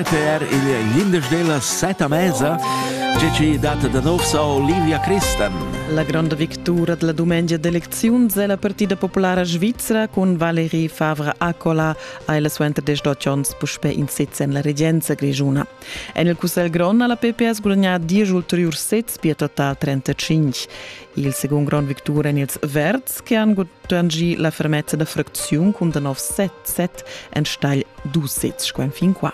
per il glinders della seta mesa, tge ci data da nov sa Olivia Christen. La grande victura della domenica d'eleczioni è la partita popolare svizzera con Valérie Favre Accola ai la suenter 18 anni puspè in sez en la regenza grigiuna. En il Cussel Grond ha la PPS guadagnato 10 ulteriori sezs per total 35. il secund grond victur en ils verds che han gudagnì la fermezza da fracziun cun da nov 7-7 enstagl dus sezs qua fin qua.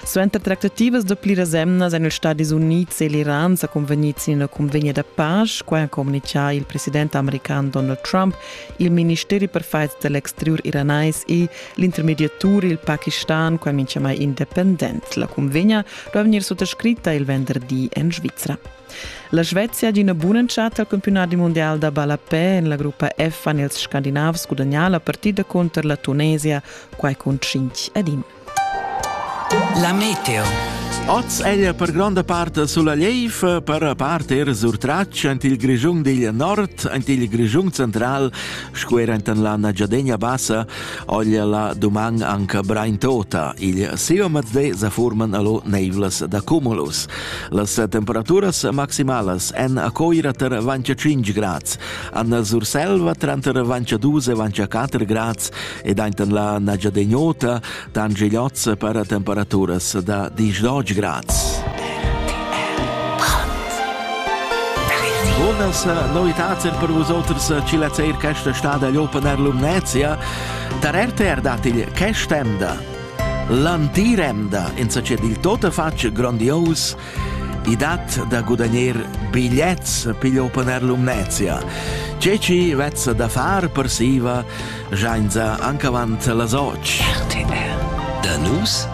Suenter tractativas da pliras emnas èn ils Stadis Unids e l'Iran sa convegnids in ina convegna da pace, quai ha communichà il president american Donald Trump, il ministeri per fight dell'exterior iranais e l'intermediatur il Pakistan, quai mincha mai independent. La convegna duò vegnir suttascritta il venderdi en Svizra. La Svezia d'ina bun'entschatta al campiunadi mundial da ballapè en la gruppa F han ils Scandinavs gudagnà la partida cunter la Tunesia, quai cun 5 ad 1. La meteo. Oz è per gronda part sulla Lief, per part er sur Tratsch, ent il Grischun digl nord, ent il Grischun central, sco er ent la Nagyadegna Bassa, ogl la doman anca Brain Tota. Il siomaz de sa furman allo neivlas da cumulus. Las temperaturas maximalas èn a Coira tar avantia 5 grads, a Surselva tranter avantia 2 e avantia 4 grads ed ainten la Nagyadenyóta tan Gigliozz para temperaturas da 10 grads. Bunas novitads per vosoters ci la cer questa stad agli Open Air Lumnezia. Tar RTR datigl che stenda? L'antir emda insatge dil totafatg grondios i dat da gudagner bigliets pigl open air Lumnezia. Tge ci vezza da far per siva jainza anche avant las 8. RTR. Da nus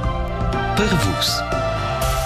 per vus.